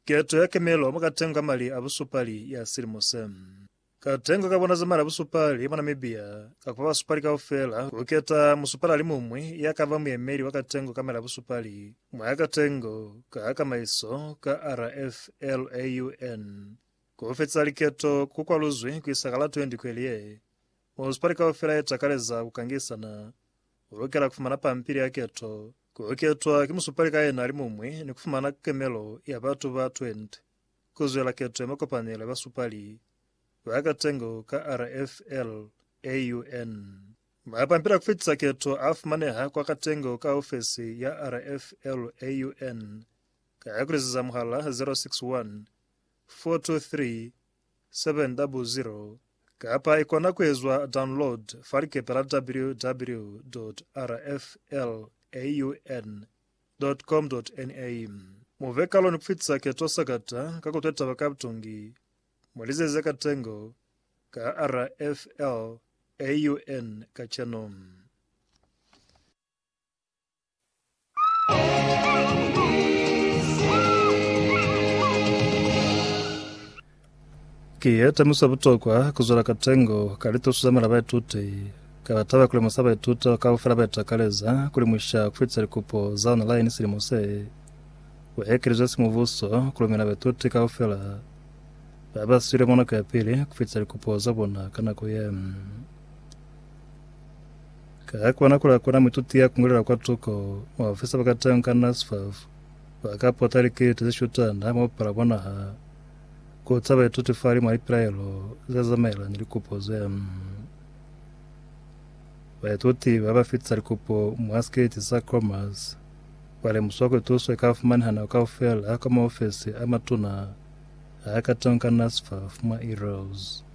Keto ya kemelo mwa katengo ka mali a busupali ya silimo se. Katengo ka bona za mali a busupali mwa Namibia ka kupa basupali kaufela ku keta musupali ali muñwi ya ka ba muyemeli wa katengo ka mali a busupali mwa katengo ka kamaiso ka RFLAUN. Ku fetisa liketo ku kwaluzwi ku isa ka la 20 kweli ye, Munisipali kaufela ye takaleza ku kangisana. U lukela ku fumana pampili ya keto, ku ketwa ki musupali ka yena alimuñwi ni ku fumana kukemelo ya batu ba 20 ku zwela keto ya makopanelo ya basupali ba katengo ka RFL AUN. Mapampili a ku fitisa keto a fumaneha kwa katengo ka ofesi ya RFL AUN ka ku liziza muhala 061 423 700 kapa i kona ku ezwa download fa likepe la www.rflaun.com.na. Mu be kalo ni ku fitisa keto sakata ka ku twa taba ka butungi mwa lizazi za katengo ka rflaun kacenu. Ki ye temuso ya butokwa ku zwela ka tengo ka lituso za mela baituti. Ka ba taba ku lemusa baituti bao kaufela ba itakaleza ku limuša ku fitisa likupo za online silimo se. Ku ekelezwe simubuso ku lumela baituti kaufela ba ba swile mwa nako ya pili ku fitisa likupo za bona ka nako ye. Ka kona ku lakona muituti ya kungulela kwa tuko mwa ofisi ya bakateñi ka NSFAS, ba ka pota likiliti ze shutana ha mwa pala bona ha ku ca baituti fali mwa lipilaelo ze zamaelana ni likupo ze. Baituti ba ba fitisa likupo mwa sikiliti sa COMAS ba lemusiwa kuli tuso i ka fumaneha nako kaufela kwa maofisi a matuna a kateñi ka NSFAS mwa Ereos.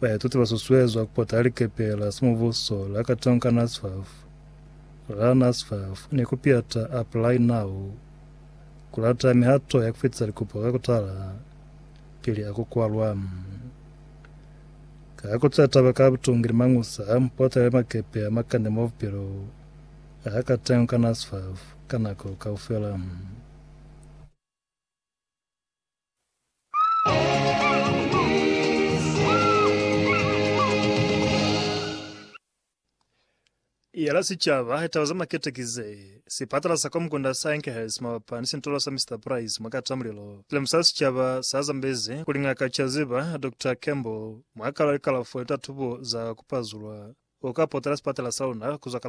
Baituti ba susuezwa ku pota likepe la simubuso la Katonka NASFAF, la NASFAF, ni ku piata Apply Now ku lata mihato ya ku fitisa likopo ka ku tala pili a ku kwalwa. Ka ku tsea taba ka butungi ni mañusa, mupota ya makepe a makande mwa bupilo a ka tengwa ka NASFAF ka nako kaufela. Yela sicaba taba za makete ki ze, Sipatala sa Komkunda sa Enkhurst mabapa ni sintolo sa Mister Price mwa kata mulilo. Lemusa sicaba sa zambezi kuli Ngaka Chaziba, Doctor Campbell, mwa kalo ya likalafo ni tatubo za kupazulwa, uka potela sipatala sa luna kuzwa ka la 1.